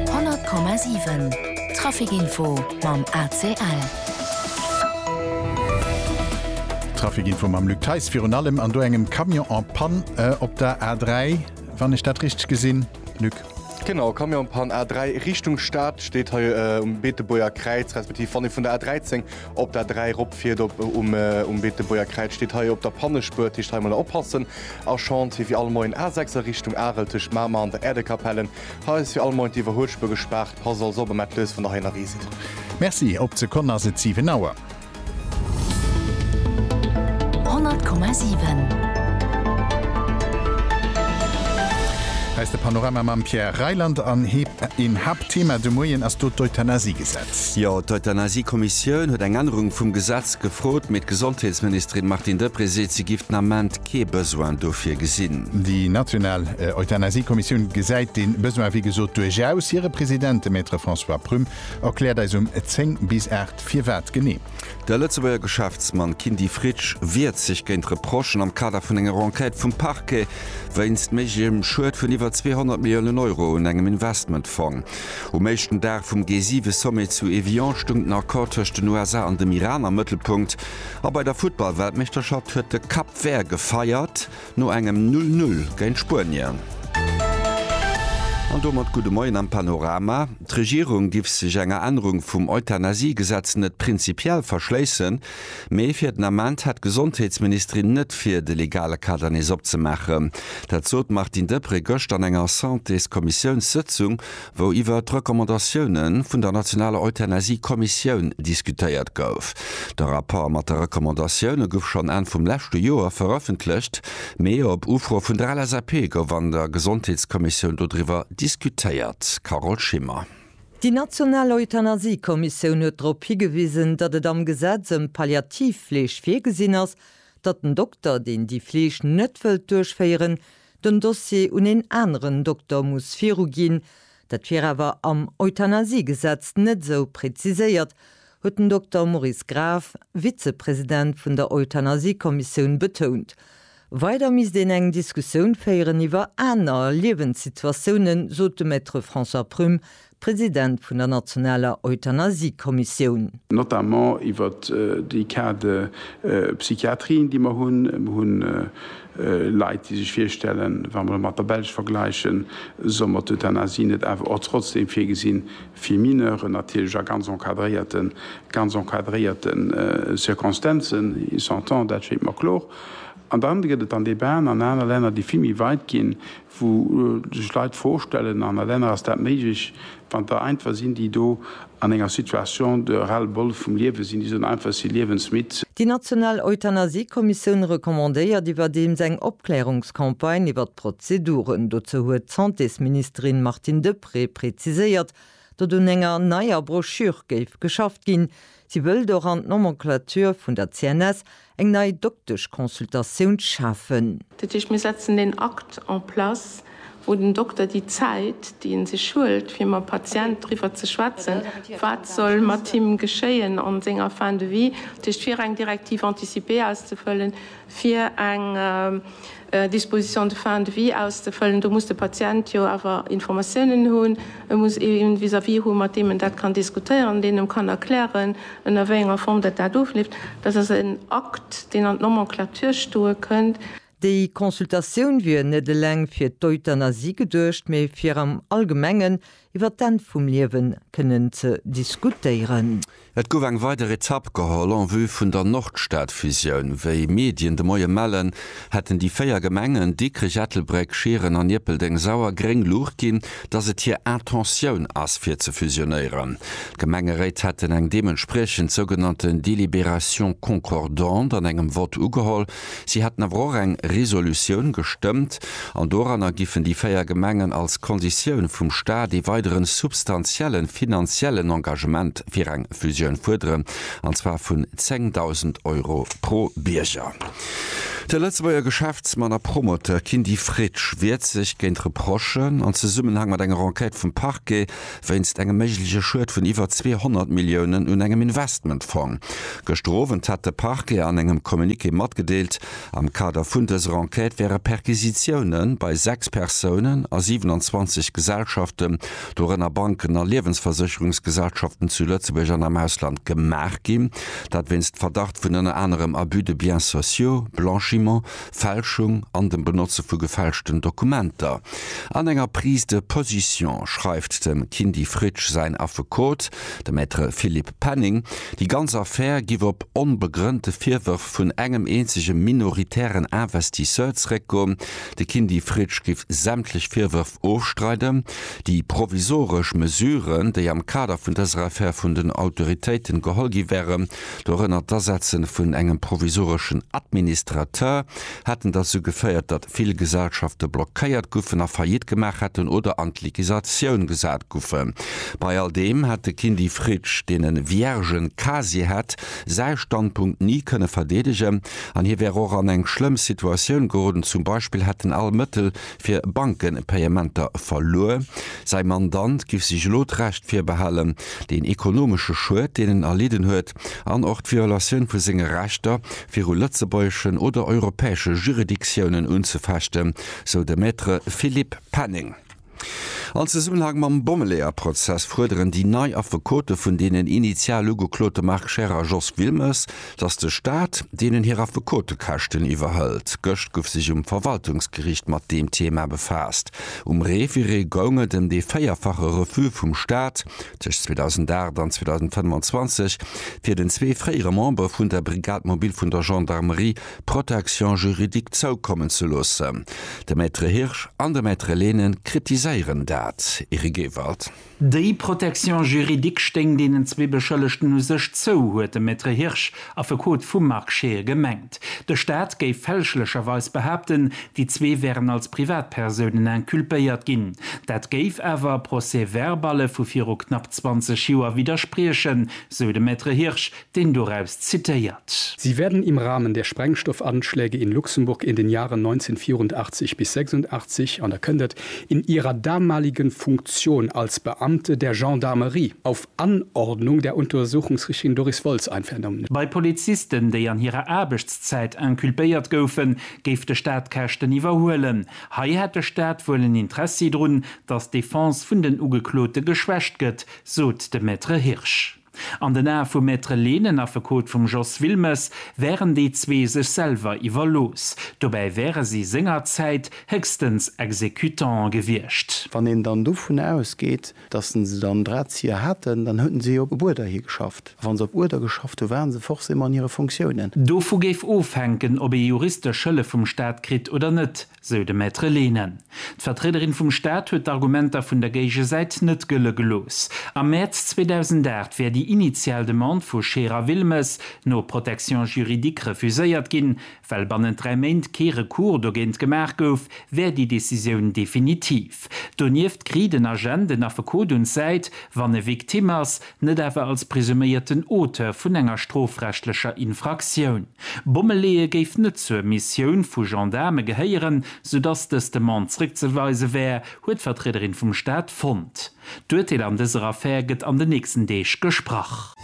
100,7 Trafic Info mam ACL. Trafic Info mam Luc Theis. Virun allem an do engem Camion en panne op der A3, wann ech dat richteg gesinn, Luc. Genau, Camion en panne A3 Richtung Stad, steet hei um Beetebuerger Kräiz, respektiv wann ee vun der A13 Op der 3 ropfiert op um Beetebuerger Kräiz steet hei op der Pannespuer, dat heescht hei emol oppassen. A Schant wier fir all Moien A6 a Richtung Arel tëscht Mamer an der Äerdekapellen. Hei ass fir all Moien d'Iwwerhuelspuer gespaart. Passt also op emat lues vun der Heiner Risel. Merci, op d'Sekonn ass et 7 Auer. 100,7. Hei ass de Panorama mam Pierre Reyland an een Haaptthema de Moien ass do d'Euthanasie. Jo, d'Euthanasie-Kommissioun huet eng Ännerung vum Gesetz gefrot, mee d'Gesondheetsministerin Martine Deprez seet, si géif den Ament kee Besoin dofir gesinn. Déi national Euthanasie-Kommissioun gesäit dee Besoin wéi gesot duerchaus. Hire President, de Maître François Prum, erkläert eis um 10 bis 8 firwat genee. De Lëtzebuerger Geschäftsmann Kindy Fritsch wiert sech géint Reprochen am Kader vun enger Enquête vum Parquet wéinst méiglechem Schued vun iwwer 200 Milliounen Euro un engem Investmentfong. Um éischten Dag vum G7-Sommet zu Evian stoung den Accord tëscht den USA an dem Iran am Mëttelpunkt. A bei der Futtball-Weltmeeschterschaft huet de Cap Vert gefeiert no engem Null Null géint Spuenien. An domat gudde Moien am Panorama. D'Regierung giff sech enger Ännerung vum Euthanasie-Gesetz net prinzipiell verschléissen. Mee fir den Ament hätt d'Gesondheetsministerin net vir, de legale Kader nees opzemaachen. Dat sot d'Martine Deprez gëscht an enger Santéskommissiounssëtzung, wou iwwert d'Recommandatioune vun der nationaler Euthanasie-Kommissioun diskutéiert gouf. De Rapport mat de Recommandatioune gouf schonn Enn vum leschte Joer verëffentlecht, mee op Ufro vun der LSAP gouf an der Gesondheetskommissioun dodriwwer diskutéiert. Carole Schimmer. Déi national Euthanasie-Kommissioun huet drop higewisen, datt et am Gesetz ëm d'Palliativfleeg virgesinn ass, datt den Dokter, deen déi Fleeg net wëllt duerchféieren, den Dossier un een aneren Dokter muss viruginn. Dat wier awer am Euthanasie-Gesetz net esou preziséiert, huet den Dokter Maurice Graf, Vizepresident vun der Euthanasie-Kommissioun, betount. Weider misst een eng Diskussioun féieren iwwer aner Liewenssituatiounen, sot de Maître François Prüm, President vun der nationaler Euthanasie-Kommissioun. Notamment iwwer déi Cas de psychiatrien, déi mer hunn. Mer hu Leit, déi sech virstellen, wa mer et mat der Belsch vergläichen, soll mer d'Euthanasie net awer och trotzdeem virgesinn, fir Mineuren natierlech a ganz encadréierten, ganz encadréierten Circonstanzen, ils s'entendent, dat schéngt mer kloer. An dann gëtt et an Debaten an aner Länner, déi vill méi weit ginn, wou sech Leit d'Fro stellen, an a Länner ass dat méiglech, wann der einfach sinn, déi do an enger Situation de ras-le-bol vum Liewe sinn, déi soen einfach, si liewensmidd. Déi national Euthanasie-Kommissioun recommandéiert iwwerdeems eng Opklärungscampagne iwwer d'Prozeduren. Dozou huet d'Santésministerin Martine Deprez Prêt präziséiert, datt un enger neier Broschür géif geschafft ginn. Si wëllt och an d'Nomenclature vun der CNS eng nei Dokteschconsultatioun schafen. Dat heescht, mir setzen en Akt en place, wou den Dokter déi Zäit, déi e sech huelt, fir mam Patient driwwer ze schwätzen, wat soll mat him geschéien an senger Fin de vie, dat heescht fir eng Directive anticipée auszefëllen, fir eng. Dispositions de fin de vie auszefëllen. Do muss de Patient jo awer Informatiounen hunn, e muss ee vis-à-vis hu mat deem en dat kann diskutéieren, deen em kann erklären, ënner wéi enger Form dat dat ofleeft. Dat ass en Akt, deen an d'Nomenclature stoe kënnt. Déi Consultatioun wier net eleng fir d'Euthanasie geduecht, mee fir am Allgemengen Iwwer d'Enn vum Liewen kënnen ze diskutéieren. Et gouf eng weider Etapp geholl en vue vun der Nordstadfusioun. Wéi Medien de Moie mellen, hätten déi véier Gemengen, Dikrech, Ettelbréck, Schieren an Ierpeldeng, sauer gréng Luucht ginn, datt et hir Intentioun ass fir ze fusionéieren. D'Gemengeréit hätten eng deementspriechend sougenannten Délibération concordante an engem Vott ugeholl, Si hätten awer och eng Resolutioun gestëmmt, an doranner giffen déi véier Gemengen als Konditioun vum Staat ee weidere substantielle finanziellen Engagement fir eng Fusioun fuerderen, an zwar vun 10.000 Euro pro Bierger. De Lëtzebuerger Geschäftsmann a Promoteur Kindy Fritsch wiert sech géint Reprochen an Zesummenhang mat enger Enquête vum Parquet, wéinst engem méigleche Schued vun iwwer 200 Milliounen un engem Investmentfong. Gëschter Owend hat de Parquet an engem Communiqué matgedeelt, am Kader vun dëser Enquête wäre Perquisitioune bei 6 Persounen a 27 Gesellschaften, dorënner Banken a Liewensversécherungsgesellschaften, zu Lëtzebuerg an am Ausland gemaach ginn. Dat wéinst Verdacht vun ënner anerem Abus de biens sociaux, Blanchiment, Fälschung an dem Benotze vu gefälschten Dokumenter. An enger Prise de position schreift dem Kindy Fritsch säin Affekot, de Maître Philippe Penning, déi ganz Affär giff op onbegrënnte Virwërf vun engem eenzege minoritären Investisseur zréckgoen. De Kindy Fritsch giff sämtlech Virwërf ofstreiden. Déi provisoresch Mesuren, déi am Kader vun dëser Affär vun den Autoritéiten geholl gi wären, Dorënner d'Asetze vun engem provisoreschen Administrateur hätten derzou geféiert, datt vill Gesellschafte blockéiert guffen a Faillite gemaach hätten oder an d'Liquisatioun gesat guffen. Bei all deem hätt de Kindy Fritsch, deen e viergen Casier hätt, säi Standpunkt ni kënne verdeedegen an hie wär och an eng schlëmm Situatioun geroden, zum Beispill hätten all Mëttel fir Bankenpayementer verluer. Säi Mandant giff sech elo d'Recht virbehalen, deen ekonomesche Schued, deen en erlidden huet, an och d'Violatioun vu senge Rechter viru lëtzebuergeschen oder europäesche Juridictiounen unzefechten, sou de Maître Philippe Penning. An Zesummenhang mam Bommeleeër-Prozess fuerderen déi nei Affekote vun deenen initial Ugeklote Marc Scheer a Jos Wilmes, datt de Staat deenen hir Affekotekäschten iwwerhëlt. Gëscht gouf sech um Verwaltungsgeriicht mat deem Thema befaasst. Um Reviré goung et ëm dee véierfache Refus vum Staat, tëscht 2008 an 2025, fir den zwee fréiere Membere vun der Brigade mobile vun der Gendarmerie Protection juridique zoukommen ze loossen. De Maître Hirsch an de Maître Lehnen kritiséieren dat. Eric Ewald. Déi Protection juridique stéing deenen zwee Beschëllegten u sech zou, huet de Maître Hirsch, Affekot vum Marc Scheer, gemengt. De Staat géif fälschlecherweis behaapten, déi zwee wären als Privatpersounen inculpéiert ginn. Dat géif awer Procès-verballe vu viru knapp 20 Joer widderspriechen, sou de Maître Hirsch, deen doraus zitéiert. Sie werden im Rahmen der Sprengstoffanschläge in Luxemburg in den Jahren 1984 bis 86 an da kënnt et, in ihrer damaligen Funktion als Beamte der Gendarmerie auf Anordnung der Untersuchungsrichterin Doris Woltz ein vernommen. Bei Polizisten, déi an hirer Aarbechtszäit inculpéiert goufen, géif de Staat d'Käschten iwwerhuelen. Hei hätt de Staat wuel en Interessi drun, dass d'Defense vun den Ugeklote geschwächt gëtt, sot de Maître Hirsch. An den Ae vum Maître Lee, den Affekot vum Jos Wilmes, wären déi zwee sech selwer iwwerlooss. Dobäi wäre si sengerzäit héchstens Exécutante gewiescht. Wann een dann dovun ausgeet, datt se se dann Drahtzieher haten, dann hueten si jo op Uerder hi geschafft. A wa se op Uerder geschafft hu ware se forcément an hire Fonctiounen. Dovu géif ofhänken, ob ee juristesch Hëllef vum Staat kritt oder net. sou de Maître Lehne. D'Vertriederin vum Staat huet d'Argumenter vun der Géigesäit net gëlle gelooss. Am Mäerz 2008 wär déi initial Demande vu Scherer Wilmes no Protection juridique refuséiert ginn. Well bannent dräi Méint kee Recours dogéint gemaach gouf, wär déi Decisioun definitiv. Donieft kriit en Agent en Affekot un d'Säit, wann e Victime ass. net awer als presuméierten Auteur vun enger strofrechtlecher Infraktioun. Bommeleeë géif net zur Missioun vu Gendaarme gehéieren, sou dass dës Demande zréckzeweise wär, huet d'Vertriederin vum Staat fonnt. D'Urteel an dëser Affär gëtt an den nächsten Deeg gesprach.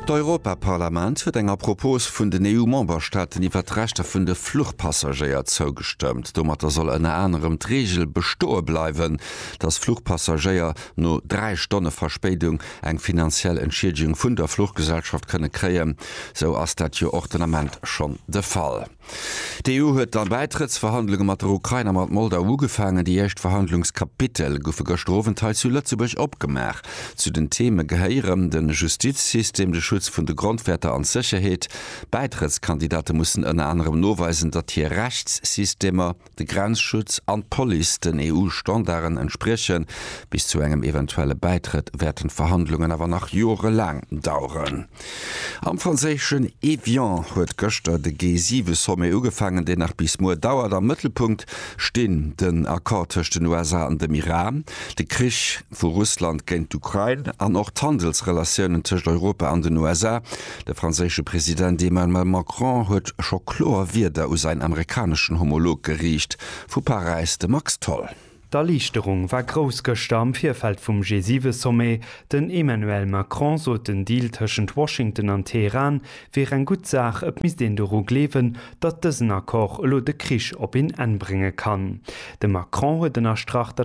D'Europaparlament huet enger Propos vun den EU-Memberstaaten iwwert d'Rechter vun de Fluchpassagéier zougestëmmt. Domatter soll ënner anerem d'Reegel bestoe bleiwen, dass Fluchpassagéier no 3 Stonne Verspéidung eng finanziell Entschiedegung vun der Fluchgesellschaft kënne kréien, esou ass dat jo och den Ament schonn de Fall. D'EU huet dann Bäitrëttsverhandlunge mat der Ukrain a mat Moldau ugefaangen. Déi éischt Verhandlungskapitel goufe gëschter Owend hei zu Lëtzebuerg opgemaach. Zu den Theme gehéieren de Justizsystem, de Schutz vun de Grondwäerter an d'Sécherheet. D'Bäitrëttskandidate mussen ënner anerem noweisen, datt hir Rechtssystemer, de Grenzschutz an d'Police den EU-Standarden entspriechen. Bis zu engem eventuelle Bäitrëtt wäerten d'Verhandlungen awer nach jorelaang daueren. Am franséischen Évian huet gëschter de G7-Sommet ugefaangen, deen nach bis muer dauert. Am Mëttelpunkt stinn den Accord tëscht den USA an dem Iran, de Krich vu Russland géint d'Ukrain an och d'Handelsrelatiounen tëscht Europa an den USA. De franséische President Emmanuel Macron huet scho kloer Wierder u säin amerikaneschen Homolog geriicht. Vu Paräis de Max Tholl. D'Erliichterung war grouss gëschter am Virfeld vum G7-Sommet. Den Emmanuel Macron sot, den Deal tëschent Washington an Teheran wier eng gutt Saach, et misst een doru gleewen, datt dësen Accord elo de Krich op een Enn brénge kann. De Macron huet ënnerstrach, datt.